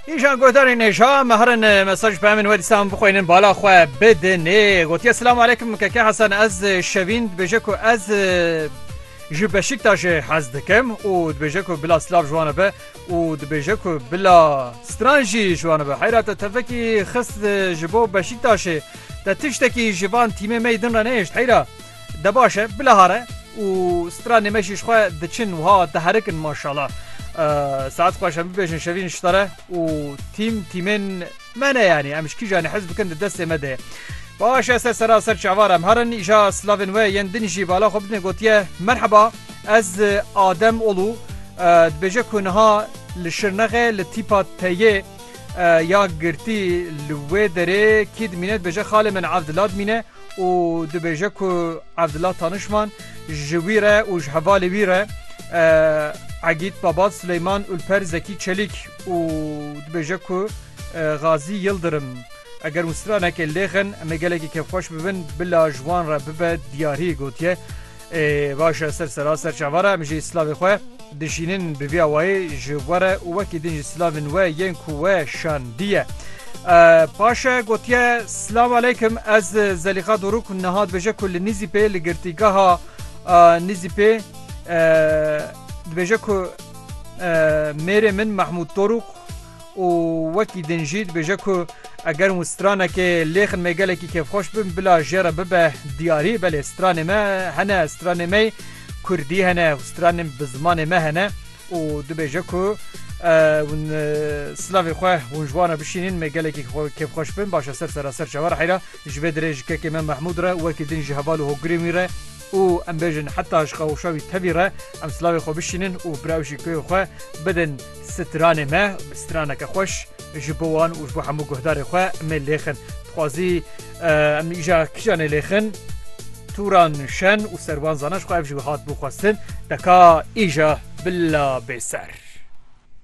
Îjan godarên hêja me herin mesaj pemên we dîsan bixwînin bala xwe bidinê gotiye silam alekim keke Hasan ez şevîn dibêje ku ez ji Beşiktaşê hez dikim û dibêje ku bila silav jiwana be û dibêje ku bila stran jî jiwana be heyra te tevekî xist ji bo Beşiktaşê te tiştekî ji van tîmê me din re nehêşt heyra De baş e bilahare û stranê me jî ji xwe diçin wiha diherik in maşala. Saet xweş em bibêjin şevîn ji te re û tîm tîmên me ne yanî em ji kîjanê hez bikin di destê me de. Baş e ser sera ser çavar em herin îja slavên we yên din jî bala xwe bidin gotiye merheba ez adem olû dibêje ku niha li şirnexê li tîpa teyê ya girtî li wê derê kî dimîne dibêje xalê min evdilad mîne û dibêje ku Evdila Tanişman ji wî re û ji hevalê wî re Egîd Babat Sileyman Ulper Zekî Çelîk û dibêje ku Gazî Yildirim eger û stranekê lêxin em ê gelekî kêfxweş bibin bila ji wan re bibe diyarî gotiye. Baş e ser sera ser çavar e em jî silavê xwe dişînin bi vî awayê ji we re û wekî din jî silavên we yên ku we şandiye. Paş e gotiye Silav aleykim ez Zelîxa Dorûk niha dibêje ku li Nîzîpê li girtîgeha Nîzîpê dibêje ku mêrê min Mehmûd Dorûk û wekî din jî dibêje ku eger hûn stranekê lêxin me gelekî kêfxweş bin bila jê re bibe diyarî belê stranê me hene stranê me yê kurdî hene û stranên bi zimanê me hene û dibêje ku hûn silavê xwe hûn ji wan re bişînîn me gelekî kêfxweş bin baş e ser sera ser çawa re heyra ji vê dirê ji kekê me Mehmûd re wekî din ji heval û hogirên wî re û em bêjin heta ji qewşa wî tevî re em silavê xwe bişînin û bi rewşî kuyê xwe bidin. Stranê me straneke xweş ji bo wan û ji bo hemû guhdarê xwe mê lêxin. Dixwazî em îja kîjan ê lêxin? Tûran şen û serwan zana ji xwe ev ji wî hat bû xwestin. Deka îja bila bêser.